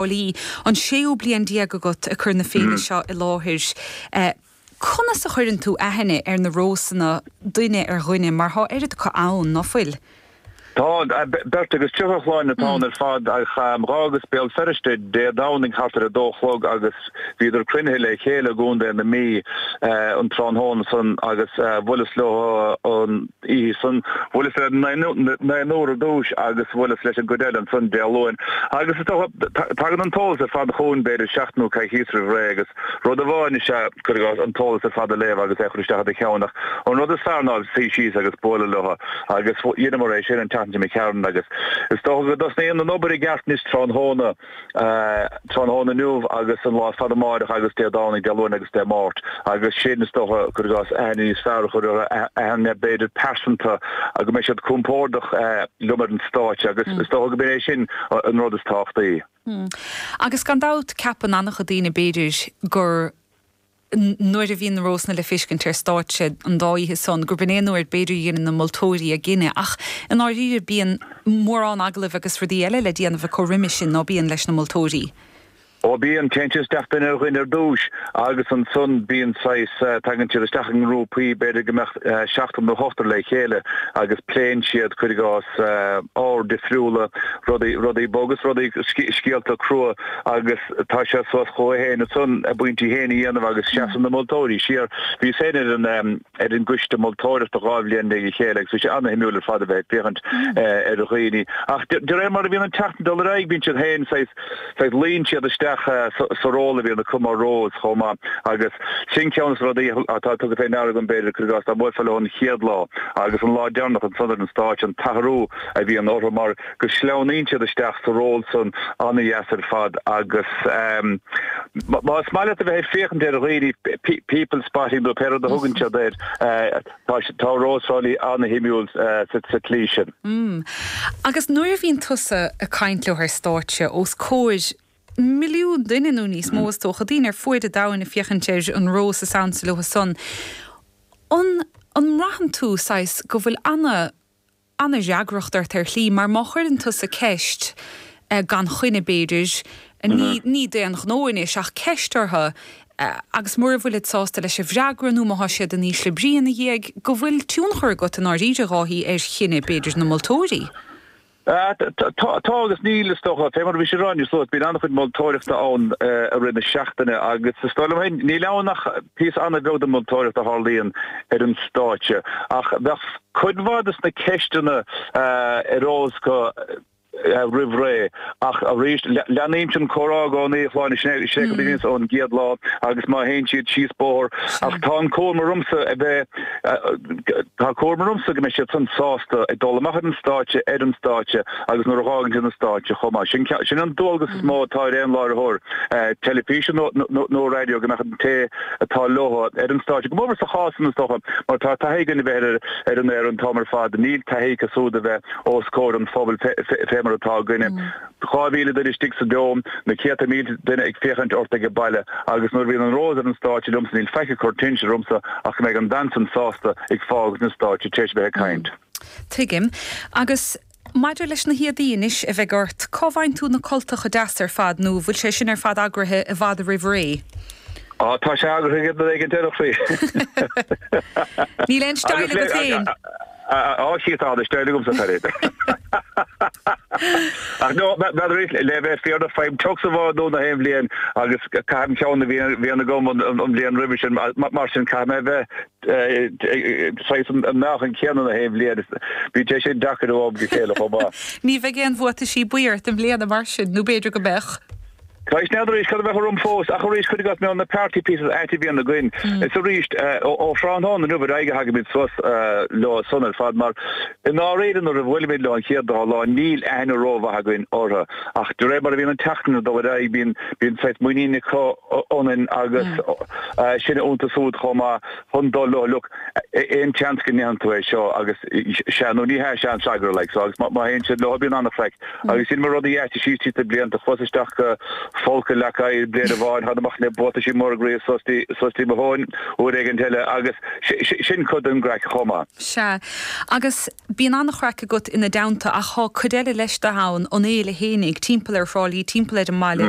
Holly, An séú bliain déag agat ag cur na féile seo i láthair. Conas a chuireann tú aithne ar na Rósanna duine ar dhuine mar tá oiread acu ann, ná fuil? Tá, beirt agus tríocha, a Shláine, atá ann ar fad ach d'fhágas Béal Feirste Dé Domhnaigh thart ar a dó a chlog agus bhíodar cruinnithe le chéile i gContae na Mí an tráthnóna san agus bhuaileas leo an oíche san, bhuaileas le naonúr ar dtúis agus bhuaileas leis an gcuid eile ansan Dé Luain. Agus is dócha, tagann an t-eolas ar fad chugainn b'fhéidir seachtain nó coicíos roimh ré agus rud amháin is ea cuir i gcás an t-eolas ar fad a léamh agus é a chur isteach i do cheann ach an rud is fearr ná suí síos agus bualadh leo agus dheineamar é sin an tseachtain seo imigh tharainn agus is dócha go dtosnaíonn an obair i gceart anois tráthnóna tráthnóna inniu agus an lá ar fad amáireach agus Dé Domhnaigh, Dé Luain agus Dé Máirt, agus sin is dócha cuir i gcás aithne níos fearr a chur orthu, aithne b'fhéidir pearsanta, go mbeidh siad compordach liom ar an stáitse agus is dócha gurb é sin an rud is tábhachtaí. Agus gan dabht ceapann an-chuid daoine b'fhéidir gur. nuair a bhíonn na rósanna le feiscint ar stáitse an dá oíche san, gurb in é an uair b'fhéidir a dheineann na moltóirí a gcinneadh. Ach i ndáiríre bíonn mórán agallaimh agus rudaí eile le déanamh acu roimis sin ná bíonn leis na moltóirí. Ó bíonn, téann tú isteach duine ar dhuine ar dtúis agus ansan bíonn saghas, tagann siad isteach i ngrúpaí, b'fhéidir go mbeadh seachtar nó ochtar le chéile agus pléann siad, cuir i gcás, ábhair difriúla, rudaí, rudaí boga is rudaí, scéalta crua. agus tá sé suas chucu féin ansan a bpointí féin a dhéanamh agus seasann na moltóirí siar. Bhíos féin ar an ar an gcoiste moltóireachta dhá bhliain i ndiaidh a chéile agus bhí sé an-shuimiúil ar fad a bheith ag féachaint ar dhaoine ach de de réir mar a bhíonn an tseachtain ag dul ar aghaidh bíonn siad féin saghas saghas luíonn siad isteach sa sa ról a bhíonn acu mar Rose chomh maith agus sin ceann de na rudaí atá tugtha fé ndeara agam b'fhéidir cuir i gcás dá mbuailfeá leo an chéad lá agus an lá deireanach ansan ar an stáitse an t-athrú a bhíonn orthu mar go sleamhnaíonn siad isteach sa ról san an-deas ar fad agus más maith leat a bheith ag féachaint ar dhaoine, people spotting nó pé rud a thugann siad air, tá Rós Thrá Lí an-shuimiúil sa tslí sin. Agus nuair a bhíonn tusa ag caint leo ar stáitse os comhair milliún duine nó níos mó is dócha, daoine ar fuaid an domhain ag féachaint ar an Rós is ansa leo san, an mbraitheann tú, saghas, go bhfuil ana, ana-fhreagracht ort ar shlí mar má chuireann tusa ceist gan choinne b'fhéidir ní d'aon ghnó anois ach ceist orthu agus mura bhfuilid sásta leis an bhfreagra nó má tá siad in ísle brí ina dhiaidh go bhfuil tionchar agat i ndáiríre, Dháithí, ar chinneadh b'fhéidir na moltóirí. Tá agus níl is dócha. Fé mar a bhíos ag rá, a Shláine, bíonn an-chuid moltóireachta ann i rith na seachtaine agus is dóigh liom féin níl ann ach Píosa an-bheag den mholtóireacht a tharlaíonn ar an stáitse ach bheadh cuid mhaith de na ceisteanna ar eolas acu roimh ré. Ach arís, leanaimse an comhrá i gcónaí, a Shláine, sin é go mbímse ann ón gcéad lá agus má théann siad síos bóthar ach tá an cúram ormsa a bheith, tá cúram ormsa go mbeidh siadsan sásta ag dul amach ar an stáitse, ar an stáitse. agus nuair a fhágann siad an stáitse chomh maith. Sin sin an dualgas is mó atá ar aon láithreoir teilifíse nó nó raidió go mbeadh an té atá leo ar an stáitse, go mór mór sa chás san is dócha, mar tá taithí againn a bheith ar an aer an t-am ar fad, níl taithí acu siúd a bheith os comhair an phobail fé fé mar atá againne. Dhá mhíle duine istigh sa Dome, na céadta mílte duine ag féachaint ort ag baile agus nuair a bhíonn an rós ar an stáitse liomsa níl faic ag cur tinnis ormsa ach go mbeidh an bhean san sásta ag fágaint na stáitse tar éis a bheith ag caint. Tuigim. Agus maidir leis na héadaí anois a bheidh ort, cá bhfaigheann tú na cultacha deasa ar fad nó bhfuil sé sin ar fad eagraithe i bhfad roimh ré? Á, tá sé eagraithe ag an éigin deireadh faoi. Níl aon style agat féin? Á, Jesus tá, tá style agamsa, tá rud. Ach nó, bead arís, le bheith fírinneach, faighim tux amháin nua na haon bhliain agus caithim ceann a bhíonn agam an bhliain roimhe sin, mar sin caithfidh mé a bheith saghas an meáchan chéanna na haon bhliain. Bíonn sé sin deacair ó am go chéile chomh maith. Ní bheidh aon bhuataisí buí ort i mbliana mar sin, nó b'fhéidir go mbeadh? Cá bhfios arís cad a bheidh orm fós, ach arís cuir i gcás na party pieces aite a bhíonn againn. Is arís, ó thráthnóna inniu ar aghaidh a thagaimid suas leo san ar fad, mar i ndáiríre nuair a bhuailimid leo an chéad dá lá níl aithne rómhaith againn orthu. Ach de réir mar a bhíonn an tseachtain ag dul ar aghaidh bíonn saghas muiníne acu ionainn agus. againne iontu siúd chomh maith chun dul ó look aon tseans go ndéanann tú é seo agus sea nó ní hea sea an freagra like so agus má má théann siad leo bíonn an-chraic agus sin mar rud a dheaití síos tríd na blianta chuas isteach i bhfolcadh leac oighir bliain amháin thána amach le buataisí móra groí suas go dtí suas go dtí mo thóin uair éigint eile agus sin cuid den gcraic chomh maith. Sea agus bíonn an-chraic agat ina dteannta ach tá cuid eile leis do thonn an fhéile fhéinig timpeall ar Thrá Lí timpeall ar an mbaile